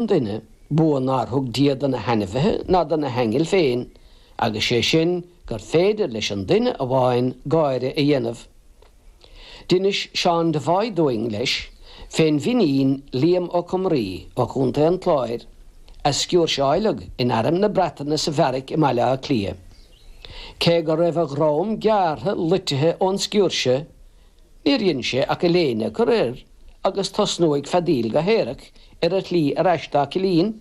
nduine, bua nár thug Dia do na hainmhithe ná do na haingil féin, agus sé sin, gur féidir leis an duine amháin gáire a dhéanamh. D'inis Seán Devoy dúinn, leis, fén bhFinín Liam Ó Comhraí ó Chontae an Chláir, a sciúirseáileadh in airm na Breataine sa bheairic i mBaile Átha Cliath. Cé go raibh a dhroim gearrtha loitithe ón sciúirse, Níor dhein sé ach a léine a chur air agus tosnú ag feadaíl go haerach ar a shlí ar ais dá chillín.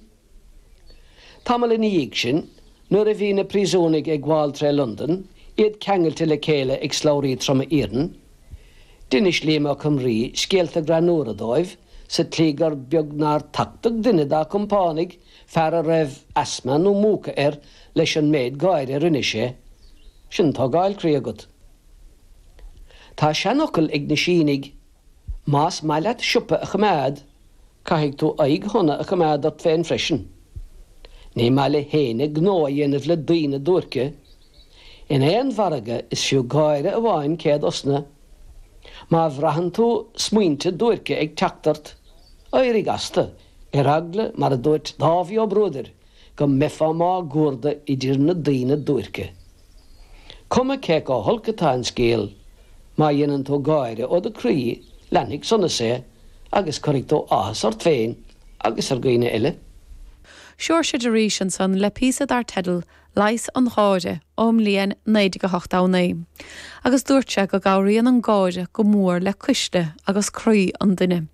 Tamall ina dhiaidh sin, nuair a bhí na príosúnaigh ag gabháil tré Londain, iad ceangailte le chéile ag slabhraí troma iarainn, d'inis Liam Ó Comhraí scéalta greannúra dóibh sa tslí gur beag nár tachtadh duine dá chompánaigh, fear a raibh asma nó múcadh air, leis an méid gáire a rinne sé. Sin tógáil croí agat. Tá seanfhocal ag na Sínigh, Más maith leat siopa a choimeád, caithfidh tú aghaidh shona a choimeád ort féin freisin. Ní maith le héinne gnó a dhéanamh le daoine duairce. In aon mhargadh is fiú gáire amháin céad osna. Má bhraitheann tú smaointe duairce ag teacht ort, éirigh astu, ar eagla, mar a dúirt Dáibhí Ó Bruadair, go mbeifeá mágcuarda idir na daoine duairce. Cuma cé chomh holc atá an scéal, má dhéanann tú gáire ó do croí, leanfaidh sonas é agus cuirfidh tú áthas ort féin agus ar dhaoine eile. Seoirse de Rís ansan le píosa dar teideal Leigheas an Gháire ón mbliain 1989 agus dúirt sé go gcabhraíonn an gáire go mór le cuisle agus croí an duine.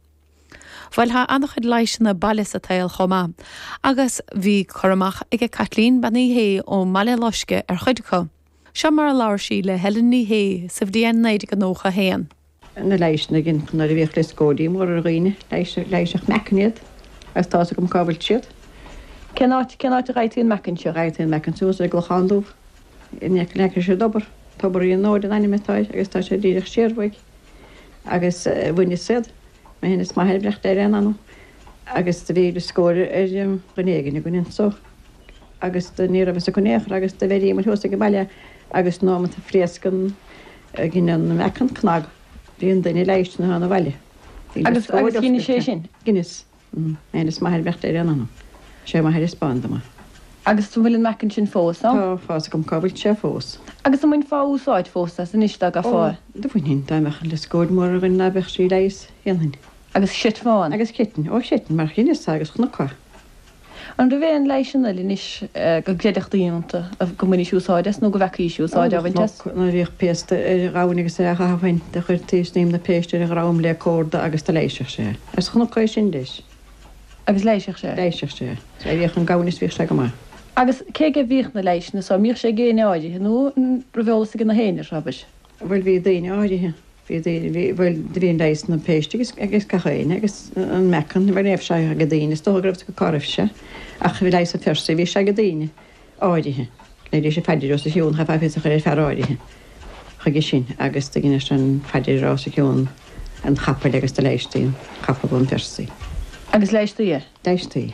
Bhuel, tá an-chuid leighseanna baile sa tsaol chomh maith, agus bhí cur amach ag Caitlín Bean Uí Shé ón mBaile Loiscthe ar chuid acu. Seo mar a labhair sí le Helen Ní Shé sa bhliain 1991. na leighseanna nuair a bhíodh lioscóidí móra ar dhaoine, leighiseadh meacan iad, agus tá 'fhios agam cá bhfuil siad. Cén áit, cén áit a gheibhtí an meacan so? Gheibhtí an meacan thuas i gClochán Dubh, in aice leis an dtobar, Tobairín an Óir an ainm atá air, agus tá sé díreach siar uaidh. agus bhaineas iad, mé féin is m'athair, beannacht Dé lena anam, agus do bhí lioscóid ar dhuine éigin againn anso agus do ní raibh fhios acu in aon chor agus do bheiríomar thuas age baile agus an nóimeat a phléasc an gin an mheacan cnag bhí an duine leighiste nuair a thána abhaile. Bhí go scór de. Agus agus cé inis é sin? D'inis. D'inis m'athair, beannacht Dé lena anam. Sé m'athair a thaispeáin dom iad. Agus an bhfuil an meacan san fós ann? Tá fhios agam cá bhfuil sé fós. Agus an mbainfeá úsáid fós as anois dá gcaithfeá é? Ó, do bhainfinn. Dá mbeadh an lioscóid mhór againn ná beadh sí leighiste. Dhéanfainn. Agus chreidfeá ann? Agus chreidfinn. Ó, chreidfinn mar dheineas é agus chonac é. An raibh aon leighiseanna eile anois go gcreidfeadh daoine iontu go mbainis úsáid as nó go bhfeacaís úsáid á bhaint as? Chonac nuair a bhíodh péiste ar ghamhain agus ar ghamhain do chuirtí Snaidhm na Péiste ar a dhrom le corda agus do leighiseadh sé. Is chonac é sin leis. Agus leighiseadh sé? Leighiseadh sé. Is d'éiríodh an gamhain is bhíodh sé go maith. Agus cé go mbíodh na leighiseanna so, mbíodh sé ag éinne áirithe nó an raibh eolas ag gach aon ar Shrabair? bhuel, bhí daoine áirithe, bhí daoine, bhí, bhuel, do bhí leigheas na péiste agus, ag gach éinne, agus an meacan, bhuel, ní raibh sé ach ag daoine, is dócha go raibh sé, go raibh sé ach bhí leigheas an Phersaigh, bhí sé ag daoine áirithe, dheineadh sé paidir a rá os a chionn, chaithfeá fios a chur ar fhear áirithe chuige sin agus do dheineadh sé an phaidir a rá os cionn an chapaill agus do leighistí an capall ón Phersaigh. Agus leighistí é? Leighistí.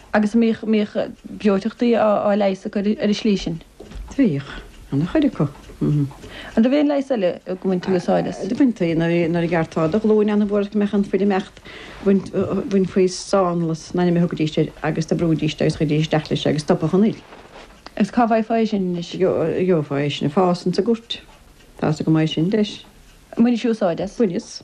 agus an mbíodh breoiteachtaí á leigheas acu ar an slí sin. Bhíodh. Ana-chuid acu. An raibh aon leigheas eile go mbaintí úsáid as? Do bhaintí. Nuair a ghearrtá do ghlúin ana-mhór go mbeadh an fhuil ag imeacht, bhainfí slánlus an ainm a thugaidís air agus do bhrúidís é agus chuiridís isteach leis agus stopadh an fhuil. Agus cá bhfaighfeá é sin anois? Gheofá é sin ag fás insna goirt. Tá san go maith sin leis. An mbainis úsáid as? Bhaineas.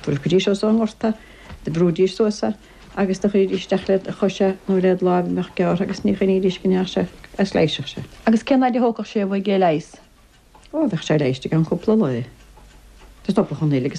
Phiocaidís suas as an ngort é, do bhrúidís suas é, agus do chuiridís isteach led chois é, nó led láimh a bheadh gearrtha agus ní choinnídís go ndeach sé agus leighiseadh sé. Agus cén fhaid a thógfadh sé uaidh é a leigheas? Ó, bheadh sé leighiste i gceann cúpla lá. Do stopadh an fhuil agus.